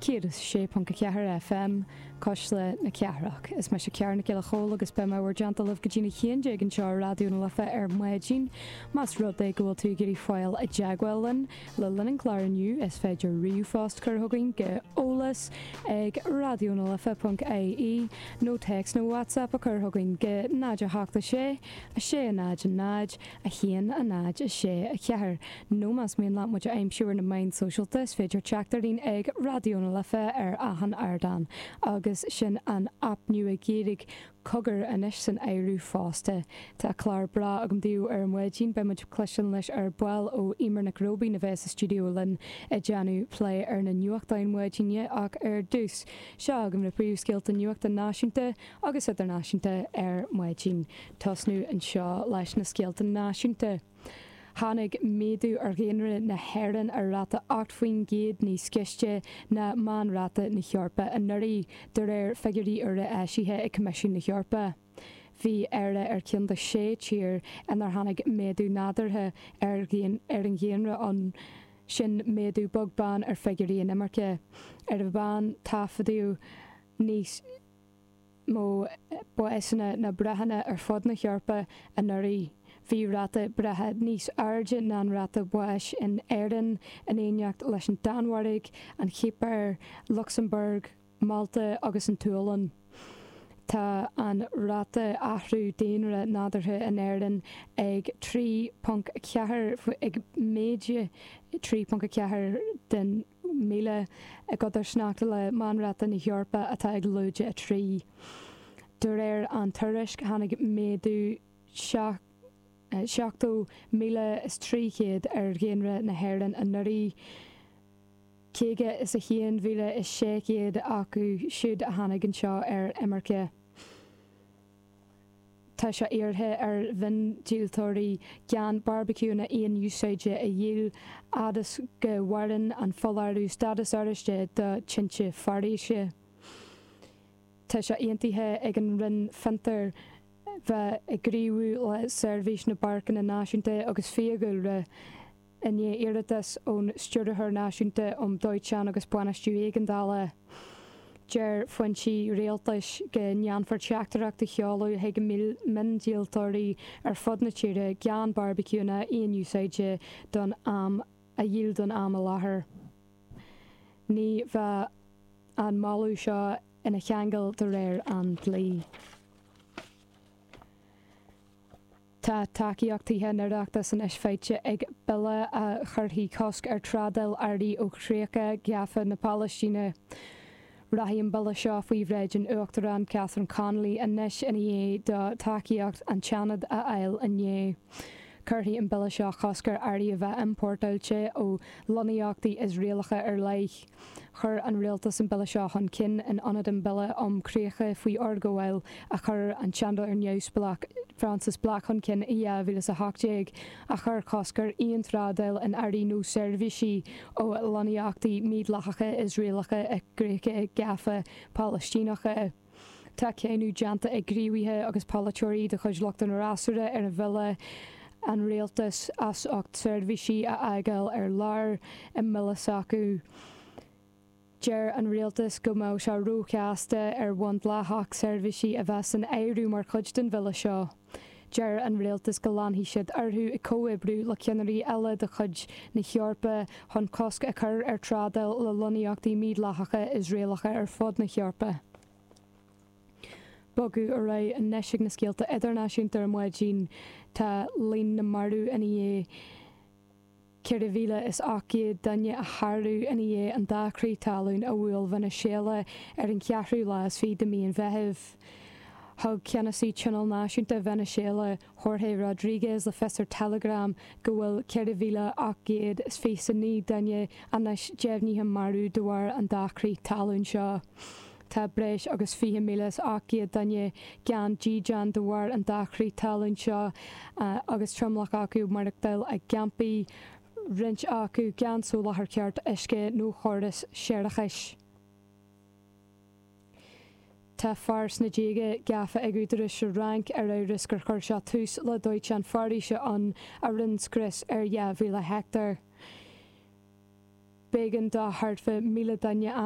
106.4 FM, Cois Life na Cathrach. Is mise Ciara Nic Giolla Chomhaill agus beidh mé in bhur dteannta libh go dtí na haon déag anseo ar Raidió na Life ar maidin. Más rud é go bhfuil tú ag iarraidh dul i dteagmháil linn le linn an chláir inniu is féidir ríomhphost a chur chugainn go eolas ag raidionalife.ie nó téacs nó WhatsApp a chur chugainn go 0 8 6 6 0 0 1, a 0, a 6, a 4 nó más mian leat muid a aimsiú ar na meáin sóisialta is féidir teacht orainn ag Raidió na Life ar achan ardán agus sin an aip nua Giorraigh, cogar anois san áireamh fosta. Tá clár breá agam daoibh ar maidin, beidh muid ag cloisteáil anois ar ball ó Eimear Nic Róibín a bheas sa stiúideo linn ag déanamh plé ar na nuachtáin maidine ach ar dtús, seo agaibh na príomhscéalta nuachta náisiúnta. agus idirnáisiúnta ar maidin. Tosnú anseo leis na scéalta náisiúnta. Tháinig méadú ar dhaonra na hÉireann ar ráta 8 faoin gcéad níos gaiste ná meánráta na hEorpa anuraidh, de réir figiúirí úra eisithe ag Coimisiún na hEorpa. Bhí Éire ar cheann de shé tír inar tháinig méadú nádúrtha ar ar an daonra ann, sin méadú beag beann ar figiúirí inimirce, ar an meán taifeadadh níos. mó básanna ná breitheanna ar fud na hEorpa anuraidh, bhí ráta breithe níos airde ná an ráta báis in Éirinn, in éineacht leis an Danmhairg, an Chipir, Lucsamburg, Málta agus an tSualainn. Tá an ráta athrú daonra nádúrtha in Éirinn ag 3.4, ag méadú 3.4 den. míle, i gcodarsnacht le Meánráta na hEorpa atá ag lúide a 3. De réir an tuairisc, tháinig méadú 70,300 ar dhaonra na hÉireann anuraidh, 51,600 acu siúd a tháinig anseo ar imirce. Tá sé iarrtha ar mhiondíoltóirí gan beárbaiciúnna aon-úsáide a dhíol fhad is go mhaireann an foláireamh Stádas Oráiste do Tinte Foraoise. Tá sé aontaithe ag an Roinn Fiontair bheith ag gníomhú le Seirbhís na bPáirceanna Náisiúnta agus Fiadhúlra, I ndiaidh iarratas ón Stiúrthóir Náisiúnta um Dóiteán agus Bainistiú Éigeandála, deir foinsí Rialtais go ndéanfar teachtaireacht a sheoladh chuig miondíoltóirí ar fud na tíre gan beárbaiciúnna aon-úsáide don am a dhíol don am i láthair. Ní bheadh an moladh seo ina cheangal de réir an dlí. Tá tacaíocht Thithe an Oireachtais anois faighte ag bille a chuirfidh cosc ar thrádáil earraí ó chríocha gafa na Palaistíne. Rachaidh an bille seo faoi bhráid an Uachtaráin Catherine Connolly anois ina dhiaidh dó tacaíocht an tSeanaid a fháil inné. Cuirfidh an bille seo cosc ar earraí a bheith iompórtáilte ó lonnaíochtaí Iosraelacha ar leith. Chuir an Rialtas an Bille seo chun cinn in ionad an Bille um Críocha faoi Fhorghabháil a chuir an Seanadóir Neamhspleách Frances Black chun cinn i 2018, a chuir cosc ar aon trádáil in earraí nó seirbhísí ó lonnaíochtaí mídhleathacha Iosraelacha i gcríocha gafa Palaistíneacha. Tá cáineadh déanta ag gníomhaithe agus polaiteoirí de chuid lucht an fhreasúra ar an bhille an rialtas as ucht seirbhísí a fhágáil ar lár i mbille s'acu. Deir an rialtas go mbeadh sé róchasta ar bhonn dleathach seirbhísí a bheith san áireamh mar chuid den bhille seo. Deir an rialtas go leanfaidh siad orthu ag comhoibriú le ceannairí eile de chuid na hEorpa chun cosc a chur ar thrádáil le lonnaíochtaí mídhleathacha Iosraelacha ar fud na hEorpa. Ag bogadh ar aghaidh anois chuig na scéalta idirnáisiúnta ar maidin, tá líon na marbh ina dhiaidh. Ceithre mhíle is ocht gcéad duine a shárú ina dhiaidh an dá chrith talún a bhuail Veiniséala ar an cheathrú lá is fiche de mhí an Mheithimh. Thug ceannasaí Tionól Náisiúnta Veiniséala, Jorge Rodríguez, le fios ar Telegram go bhfuil ceithre mhíle ocht gcéad is fiche 's a naoi duine anois deimhnithe marbh de bharr an dá chrith talún seo. Tá breis agus 20,700 duine gan dídean de bharr an dá chrith talún seo agus tromlach acu ag maireachtáil i gcampaí, roinnt acu gan soláthar ceart uisce nó chóras séarachais. Tá fear sna déaga gafa ag údaráis sa Fhrainc ar amhras gur chuir sé tús le dóiteán foraoise ann a rinne scrios ar 2,000 heicteár. B'éigean do thart fá 1,000 duine a.